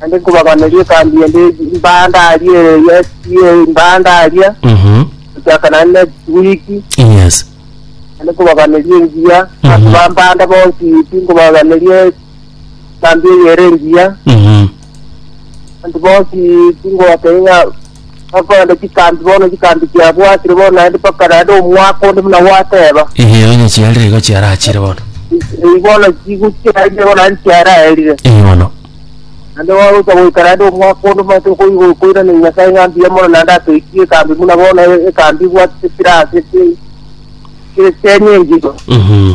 naende nkobaganeria ekambi ende mbandaria yes yes mbandaria Mhm. gochaka naende next week Yes. naende nkobaganeria engiya Mhm. abanto bambanda bonsi pi nkobaganeria ekambi eyere engiya Mhm. abanto bonsi pi ngobatebia ng'a Bakorende chikambi bono, chikambi chiabwatire bono naende mpaka naende omwaka onde buna gwateba. Eeh, onye chiarire igo chiarachire bono. Eyi bono chiguchiarire bono naende chiaraerire. Eeh, bono. Naende wagocha goika naende omwaka onde omanyete okoigo koiraneria Nyasae ng'a mbuya mono naende atoikie ekambi buna bono e- ekambi ebwatire chirase chi- chi- chieng'enchito. Mhm.